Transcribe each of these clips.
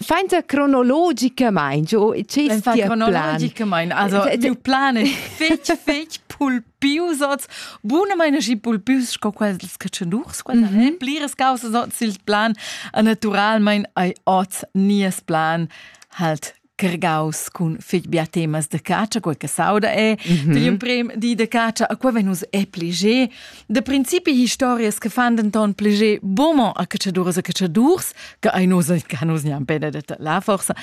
Fainta cronologicamain, o che Fainta cronologicamain, also miu plan è fetg, fetg pulpius oz, bunamain aschi pulpius sco quels che tschen durs, quella mm -hmm. pliras causas oz il plan, e naturalmain ei oz nies plan halt cargaus cun fig bia temas de cacia, quei che sauda è, mm -hmm. di imprem di de cacia, a quei vegn nus epli ge, Da principi historias che fan denton pleger bomo a catschaduras e catschadurs, che ei nos che nus niam bene detta la forsa.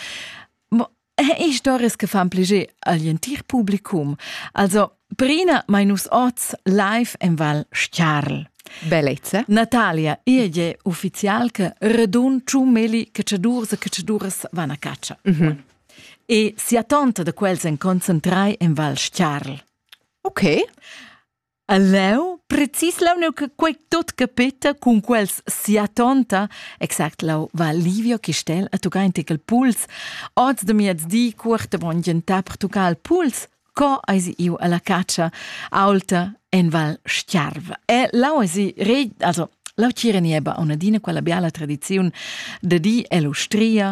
Mo historias che fan pleger agl entir publicum. Also, prima mai nus oz live en Val Stiarl. Bellezza. Natalia, irge ufficial che redun ciu meli catschaduras e catschaduras van a caccia. Mm -hmm. E sia tonta da quels en concentrai en Val Stiarl. Ok. E leu, precis leu neu che quei tot capeta cun quels sia tonta, exact lau va Livio Chistel a tocar in tecal puls, oz de miezdi cuort avon gentar per tocar il puls, co eisi iu alla caccia aulta en Val Stiarv. E lau eisi re, also lau tira nieba a una dina quella biala tradiziun de di e l'ustria,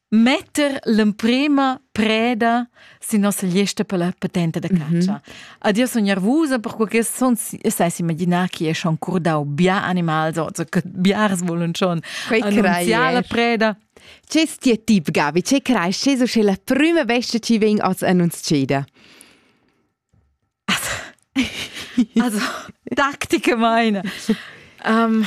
metter l'emprema preda sin nossa lista per la patente da caccia. Mm -hmm. Ad io sono nervosa per quel son sai immaginar chi è schon curdau bia animals o so, che biars volen schon annunziar la preda. C'è sti tip Gabi, c'è cresce so che la prima bestia ci ven als annunziada? Also, Taktik meine. um,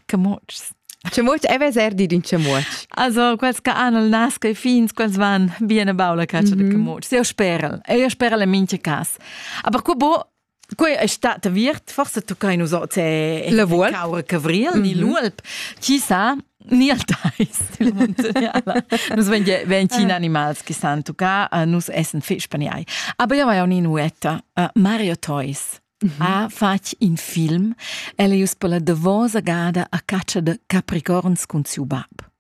Camutschs. Chamuotsch e veser dir in chamuotsch. Also, quels che han il nas che fins, quels van bien a baula caccia mm -hmm. de camutschs. Eu sperel, eu sperel in mincha cas. Aber qua bo, Quei è stata virt, forse tu kai nus oz e la volp caura cavriel mm -hmm. ni l'uolp. Chi sa, ni al tais della montagnala. Nus ven, ven cin animals che san tucà, uh, nus essen fich paniai. Aber io vai un inuetta, uh, Mario Toys. ha fatg in film. El è uss per la davosa gada a caccia de capricorns cun siu bab.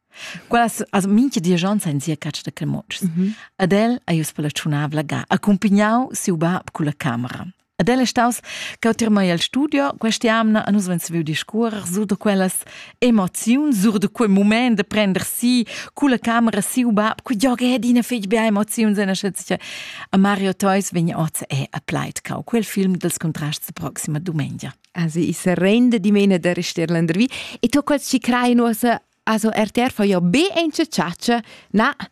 Quellas, also minche diagions ein sia caccia de clemotschs. Mm -hmm. Ad el è uss per la tschunavla ga, accompigniau siu bab cun la camera. Ad el è staus che ho tirmai al studio, questa amna a nus ven saviu discuorer su da quellas Emoziun sur da quei mument de prender si culla camera siu bab, que giog è adina fetg bia emoziuns en Schützche. A Mario Theus vegn oz è a Pleitgau, quel film dels contrasts proxima domenica. Also, ich rende di mene der Stirländer wie. E tu quels ci crei nuosa, also RTR fa ja be enche ciaccia, na,